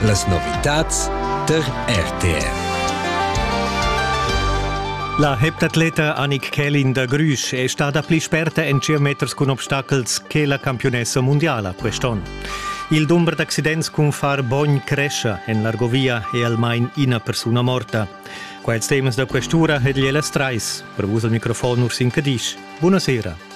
Las novitads der RTR. La heptatleta Annik Kelin da Grüsch è stada pli sperta en 5 meters cun obstacels che la campiunessa mondiala quest'onn. Il dumber d'accidents cun far bogn crescia, en l'Argovia è almain ina persuna morta. Qua ils temas da questura ed las trais, prevus al microfon Ursin Cadisch. Buonasera.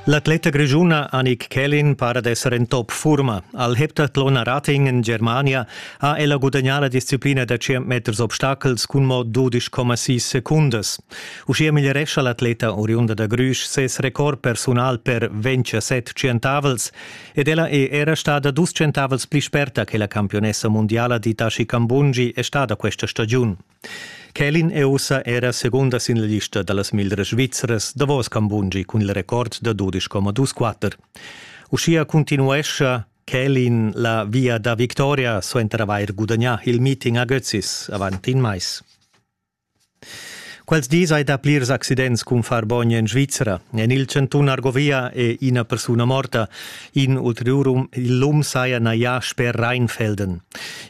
L'atleta grischuna Annik Kellin para d'esser en top furma. Al heptathlon a Rating in Germania ha ella gudagnà la disciplina da 100 meters obstacels cun mo 12,6 secundas. Uschia miglierescha l'atleta oriunda da Grüsch ses record personal per 27 tschentavels ed ella è era stada dus centavels pli sperta che la campionessa mundiala d'Itachi Kambungi è stada questa stagiun. Kelin è ussa era segunda sin la lista da las mildras svizras davos Kambungi cun il record da 12,24. Uschia continuescha Kelin la via da victoria suenter avair gudagnà il meeting a Götzis avant in mais. Quels dis hai dà plirs accidents cun far bogn en Svizra. En il chantun Argovia è ina persuna morta. In ulteriur um, il um saja najà sper Rheinfelden.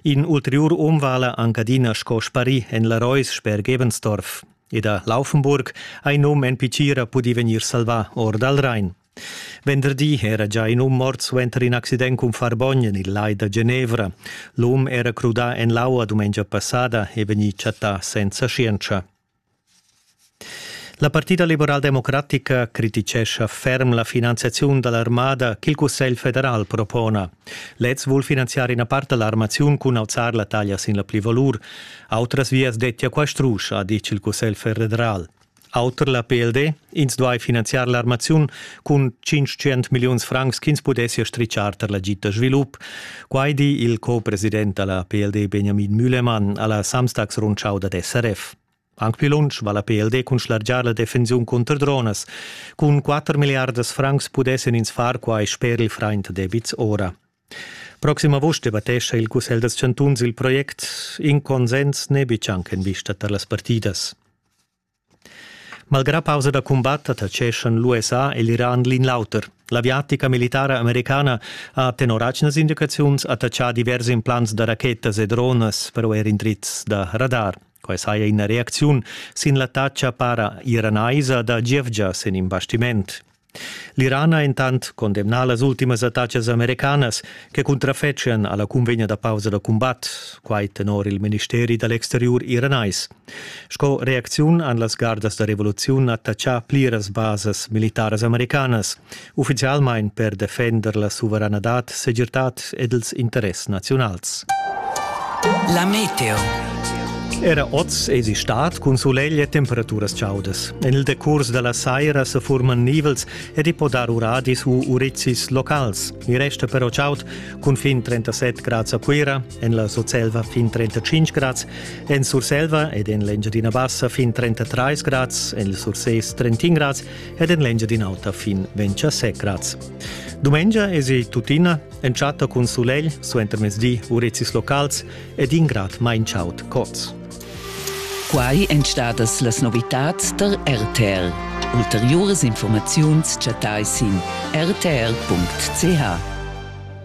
In ulteriur um vala anc adina sco sparì en la Reus sper Gebensdorf. E da Laufenburg ha in um en pitgira pudì vegnir salvà or dal Rhein. Venderdi era gia in um mort suenter in accident cun farbogn en il lai da Genevra. L'um era crudà en l'aua dumengia passada e vegnì chattà senza schientscha. La Partida liberaldemocratica criticescha ferm la finanziaziun dall'armada ch'il Cussegl federal propona. Lez vul finanziar ina part dall'armaziun cun auzar la taglia sin la plivalur. Autras vias dettia qua strusch, ha ditg il Cussegl federal. Auter la PLD, ins duai finanziar l'armaziun cun 500 milliuns francs ch'ins pudessia stritschar tar l'agid da svilup. Quai di il co-president da la PLD Benjamin Mühlemann a la Samstagsrundschau dad SRF. Anc pli lunsch va la PLD cun schlargiar la defensiun cunter dronas. Cun 4 milliardas francs pudessan ins far quai sper il fraint debits ora. Proxim avust debattescha il Cussegl dals chantuns il project. In consens n'è betg anc en vista tar las partidas. Malgrà pausa da cumbat attaccheschan l'USA e l'Iran l'in l'auter. L'aviatica militara americana ha tenor atgnas indicaziuns attachà divers implants da rachetas e dronas però er indrizs da radar. Quai saja ina reacziun sin l'attacca para iranaisa da gievgia sin in bastiment. L'Iran ha intant condemnà las ultimas attacas americanas che cuntrafetschian alla cunvegna da pausa da cumbat, quai tenor il ministeri da l'exteriur iranais. Sco reacziun han las gardas da revoluziun attaccà pliras basas militaras americanas, uffizialmain per defender la suveranadad, segirtad ed ils interess naziunals. La meteo. Era oz esi stat cun sulegl e temperaturas chaudas. En il decurs da la saira se forman nivels ed i po dar uradis u urizis locals. I resta però chaud cun fin 37 grads a Cuira, en la Surselva fin 35 grads, en Surselva ed en l'Engiadina Bassa fin 33 grads, en il Sursès 31 grads ed en l'Engiadin'Alta fin vegn chasè Graz. Dumengia es ei tuttina entschatta cun sulegl suenter mezdi urezis locals ed in grad mai chaud cots. Quai èn stadas las novitads tar RTL. Ulteriuras informaziuns chattai sin rtl.ch.